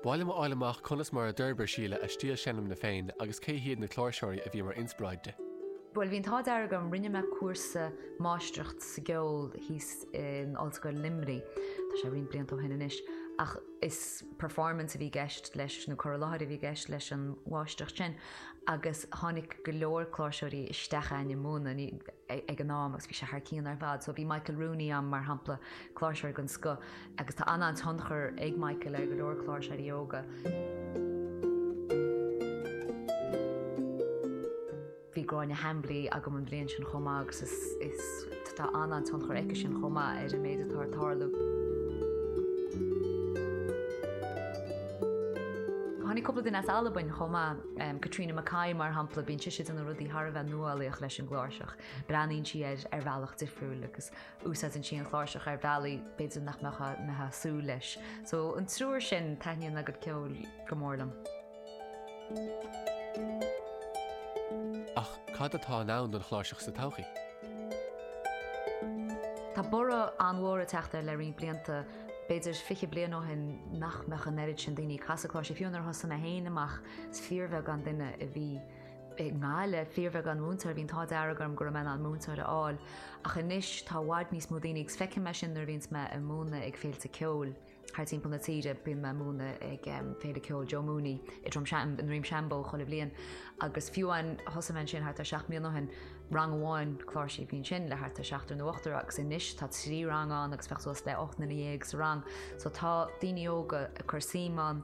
B'áil liom a fháil amach conas mar a d'fhorbair Síle a stíl seinmne féin agus cé hiad na cláirseoirí a bhí mar inspioráid di. Bhuel, bhí an t-ádh dearg orm, rinne mé cúrsa máistreacht sa gceol thíos in Ollscoil Luimnigh, tá sé roinnt blianta ó shin anois, ach is performance a bhí i gceist leis, nó cur i láthair a bhí i gceist leis an mháistreacht sin, agus tháinig go leor cláirseoirí isteach a'ainn i mbun, ag an am, agus bhí sé thar cionn ar fad, so bhí Michael Rooney a'm, mar shampla, cláirseoir den scoth. Agus tá an-tionchar ag Michael ar go leor cláirseoirí óga. Bhí Gráinne Hambly agam an bhliain sin chomh maith agus tá an-tionchar aici sin chomh maith ar an méid atá ag tarlú. Tháinig cúpla duine as Albain chomh maith, Catriona McKay mar shampla, bíonn sise ag déanamh rudaí thar a bheith nuálaíoch leis an gcláirseach, breathnaíonn sí ar bhealach difriúil agus Úsáideann sí an chláirseach ar bhealaí b'fhéidir nach mbeadh muid ag súil leis. So, an triúr sin, taitníonn a gcuid ceoil go mór liom. Ach cad atá i ndán don chláirseach sa todhchaí? Tá borradh an-mhór ag teacht uirthi le roinnt blianta. B'fhéidir fiche bliain ó shin nach mbeadh an oiread sin daoine ag casadh cláirsí, fiú nuair a thosaigh mé féin amach is fíorbheagán duine a bhí. i ngeall le fíorbheagán múinteoirí, bhí an t-ádh dearg orm go raibh mé in ann múinteoir a fháil, ach anois tá i bhfad níos mó daoine agus feicim é sin nuair a bhíonns mé ag múineadh ag féilte ceoil thar timpeall na tíre, bíonn mé ag múineadh ag Féile Ceoil Joe Mooney i Drom Seim, i nDroim Seanbhó chuile bhliain agus fiú amháin, thosaigh mé ansin thart ar seacht mbliana ó shin, rang amháin, cláirsí an bhliain sin, le thart ar seachtar nó ochtar agus anois tá trí rang ann agus bheadh suas le ocht nduine dhéag sa rang so tá daoine óga ag cur suim ann.